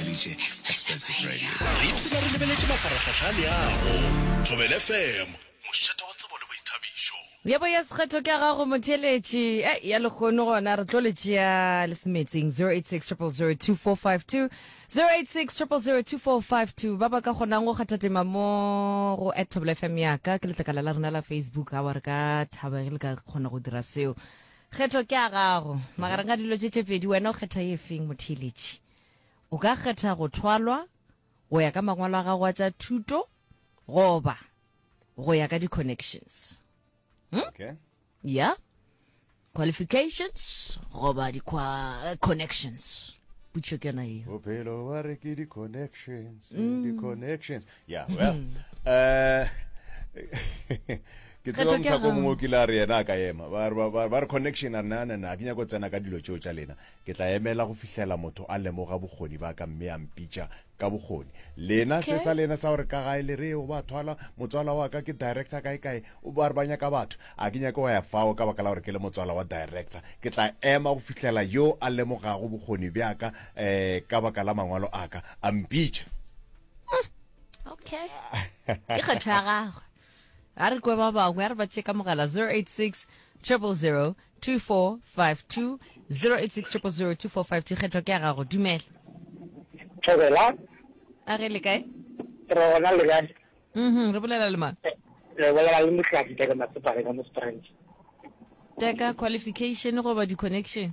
Felice, Expensive Radio. Re ipshina re lebeletše mafarahlahla a leago. Thobela FM, mošate wa tsebo le boithabišo. Yebo ya sekgetho ke ya gago motheeletši eh ya lekgono gona re tlo le tšea le se metsing 0860002452 0860002452 ba ba ka kgonang go kgathatema mo go at thobela fm yaka ke letlakala la rena la facebook a wa re ka thaba ge le ka kgona go dira seo kgetho ke ya gago magareng ga dilo tše tše pedi wena o kgetha ye feng motheeletši O ka kgetha go thwalwa go ya ka mangwalo a gago a tša thuto goba go ya ka di-connections hmm? okay. yeah qualifications goba di-connections putšo ke yona eo bophelo ba re ke di-connections mm. di-connections ya well eh ke tseba mthako mongwe ke la re yena a ka ema ba re connection a nna nna ke nyako tsena ka dilo tseo tsa lena ke tla emela go fihlela motho a lemoga bokgoni ba ka mme a mpitša ka bokgoni lena se sa lena sa gore ka gae le re o ba thwala motswala wa ka ke director kae kae o ba re ba nyaka batho a ke nyako wa ya fao ka baka la gore ke le motswala wa director ke tla ema go fihlela yo a lemogago bokgoni bjaka um eh, ka baka la mangwalo a ka a mpitša hmm, okay ke kgetho ya gagwe a re kwe ba bangwe a re ba tšeka mogala 086 000 2452 086 000 2452 kgetho ke ya gago dumela thobela a re le kae re gona le kae mhm re bolela le mang re bolela le motlaki teka matsepare ka mo springs teka qualification goba di-connection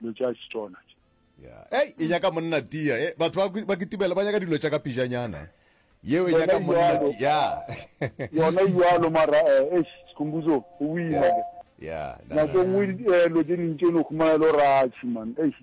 dilo tša setswana tše ya ei e nyaka monna tia e batho ba kwi- ba kitibela ba nyaka dilo tša ka pijanyana yeo e nyaka Yona monna jwalo. tia ya yona jalo mara eh, eish sekhumbuzo o boima ke ya na- nako na- nngwe di- eh, lo tse ding tše ne o khumana e le gore a chiman eish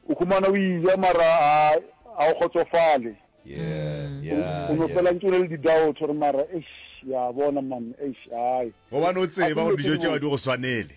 o khumana o ija mara a- a o kgotsofale ya ya o no ya. fela ntse o na le di-doubt gore mara eish ya bona man eish ai gobane o tsebe gore dijo tšeo di go swanele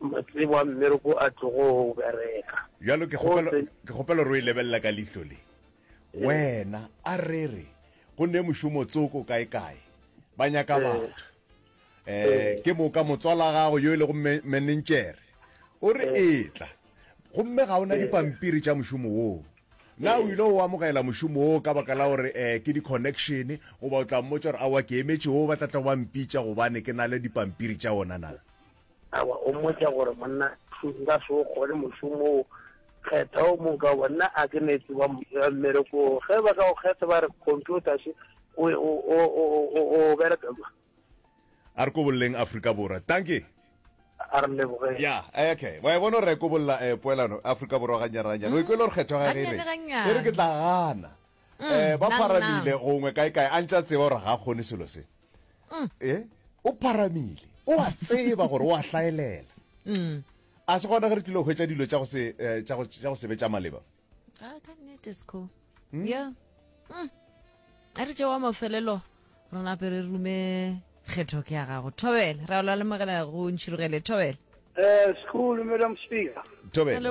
Matsebo a mmereko a tlogo bereka. Bjalo ke kgopela, ke kgopela gore o e lebelela ka lihlo le. Wena, a re re, go ne mošomo tsoko kae-kae, ba nyaka batho. Eh, ke moka motswala gago yo e lego menentšere. O re etla. Gomme ga o na dipampiri tša mošomo woo. Na o ile o amogela mošomo woo ka baka la gore eh, ke di-connection, goba o tla mmotša gore awa ke emetše woo ba tla tla go ba mpitša gobane ke na le dipampiri tša ona na? Awa, o mmotša gore, Monna, nka se o kgone mošomo wo. Kgetha o mong ka goba nna a ke ne tseba mmereko wo. Ge ba ka go kgetha ba re, Computer še, o, o, o, o, o, o bereka kwa. A re kobolleng Afrika Borwa. Dankie. A re lebogeng. Ya, okay. Wa e bona gore re kobolla eh, poelano Afrika Borwa gannyane-gannyane. O e kwele gore kgetho ya gage e reng? Gannyane-gannyane. E re, Ke tla gana. um eh, ba pharamile gongwe kae kae a ntša tseba gore ga kgone selo se um e o pharamile o a tseba gore o a hlaelela um a se gona ge re tlile go hwetsa dilo tša go se eh, tša go tša go sebe tša maleba ah, ka nnete sco hmm? ya um a re tšewa mafelelo re nape re rume kgetho ke ya gago thobele ra ola le mogela go ntšhirogele thobele um eh, school madam speaker thobele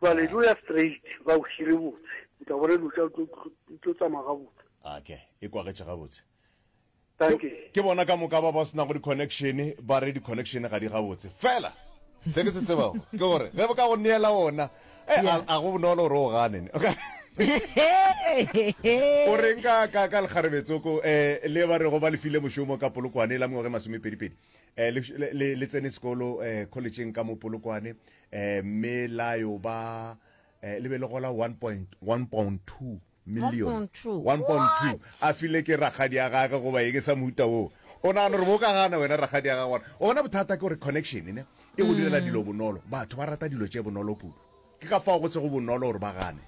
Jwale di o ya straight, ba o hire botse. O tla bona dilo tša di tlo tsamaya gabotse. A ke e kwagetše gabotse. Dankie. Ke bona ka moka ba ba se nago di-connection ba re di-connection ga di gabotse. Fela se ke se tsebago ke gore ge ba ka go neela ona e a a go bonolo gore o gane ne. O ka o reng ka ka ka lekgarebetsoko eh le ba re go ba le file mošomo ka polokwane la mengwaga e masomepedipedi eh, le, le, le tsene sekolo eh, collegeng ka mo polokwane eh, mme la yo ba eh, le be le gola 1.2 million 1.2 a file ke ragadi ya gage goba ye ke sa mohuta woo o nagana gore bo ka gana wena ragadi ya gage gona o bona bothata ke gore connection ne e go direla mm. dilo bonolo batho ba rata dilo tše bonolo kudu ke ka fao go tsego bonolo gore ba gane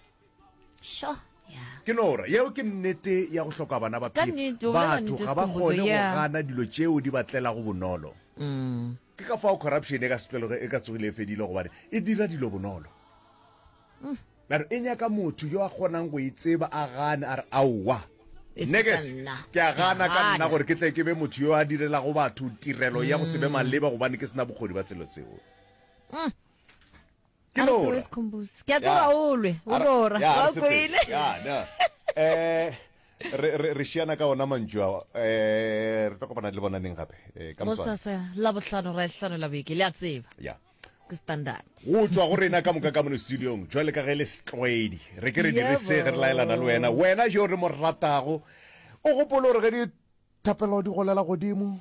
sho ya ke nora yeo ke nnete ya go hloka bana ba Ka phefo. nnete, o bolela batho nnete, ga ba Sikhumbuzo, kgone go yeah. gana dilo tšeo di ba tlelago bonolo mm. ke ka fao corruption e ka setlwelego e ka tsogile e fedile gobane e dira dilo bonolo mare e nyaka motho yo a kgonang go e tseba a gane a re aowa E se nne ke ka se- nna. ke a gana Ke a ka nna gana. gore ke tle ke be motho yo a direlago batho tirelo ya go se be maleba gobane ke sena bokgoni ba selo seo ke A re lora. tloe Sekhumbuse. Ke a tseba Ya. o lwe, o A re- lora. ya, a re Wa o sepele. kwele? Ya, na. Eh, re- re re šiana ka ona mantšu ao um re tlo kopana le bona neng gape Eh, ka moswane Gosasa la bohlano ra hlano la beke le a tseba ya ke standard go tswa go rena ka moka ka mono studiong jwale ka ge le setlwaedi re ke re dire se ge re laelana le wena wena jo re mo ratago o gopolo gore ge dithapelo di golela godimo